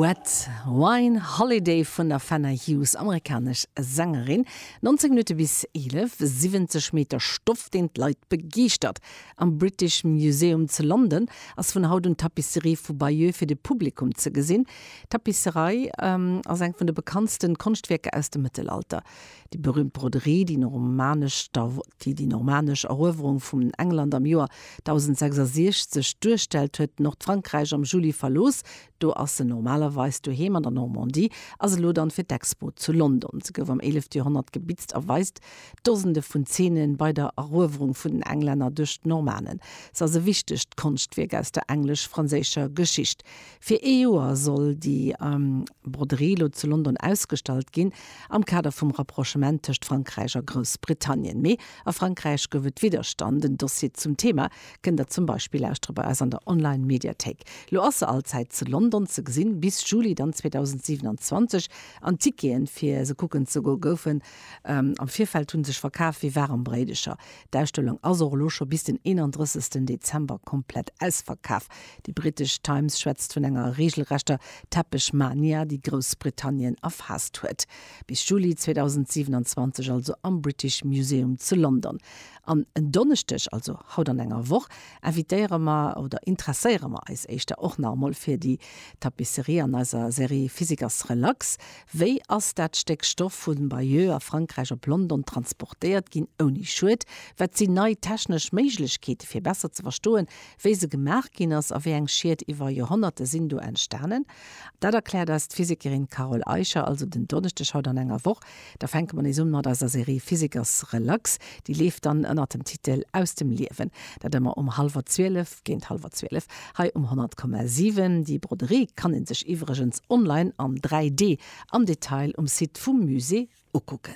Red Wine Holiday vun der Fenner Hughes, amerikanesch Sängerin, 19 Minutte bis 11, 70 Meter Stoff, deen d'Leit begeeschtert. Am British Museum zu London ass vun haut un d'Tapisserie vu Bayeux fir de Publikum ze gesinn. D'Tapisserei ass eng vun de bekanntste Konschtwierker aus dem Mëttelalter. Déi berüümt Broderie, déi normanesch, déi déi normanesch Eruewerung vum England am Joer 1066 duerstellt, huet Nordfrankräich am Juli verlooss. Do ass se normalerweis doheem an der Normandie, ass elo dann fir d'Expo zu London. Se gouf am éilefte Joerhonnert gebitzt a weist Dosende vun Zeene bei der Eruewerung vun den Englänner duerch d'Normanen. Se ass e wichtegt Konschtwierk aus der englesch-franséischer Geschicht. Fir ee Joer soll déi Broderie lo zu London ausgestallt ginn, am Kader vum Rapprochement tëscht Frankräich a Groussbritannien. Mee a Frankräich gouf et Widderstand. Den Dossier zum Thema kënnt der zum Beispill lauschteren bei eis an der Online-Mediathéik. Lo ass se allzäit zu London ze gesinn, bis Juli dann 2027. An d'Ticketen, fir se kucken ze goen, goufen am Virfeld hu sech verkaf wéi waarem Bréidecher. D'Ausstellung ass och elo scho bis den 31. Dezember komplett ausverkaf. Déi brittesch Times schwätzt vun enger reegelrechter Teppechmania, déi Groussbritannien erfaasst huet. Bis Juli 2027 also am British Museum zu London. An en Donneschdeg, also haut an enger Woch, invitéiere mer oder interesséiere mer eis éischter och nach emol fir déi Tapisserie an eiser Serie Physiker's Relax. Wéi ass dat Stéck Stoff vu Bayeux a Frankräich op London transportéiert ginn ouni Schued? Wat sinn nei technesch Méiglechkeete fir besser ze verstoen, Wéi se gemaach ginn ass a wéi eng Schied iwwer Joerhonnerte sinn do entstanen, dat erkläert eis d'Physikerin Carole Eicher also den Donneschdeg haut an enger Woch. Da fänke mer nees un mat eiser Serie Physikers Relax. Déi leeft dann ënnert dem Titel Aus dem Liewen. Dat ëmmer um hallwer zwielef, géint hallwer zwielef, hei um 100,7. Déi Broderie kann ee sech iwwregens online an 3D am Detail um Site vum Musée ukucken.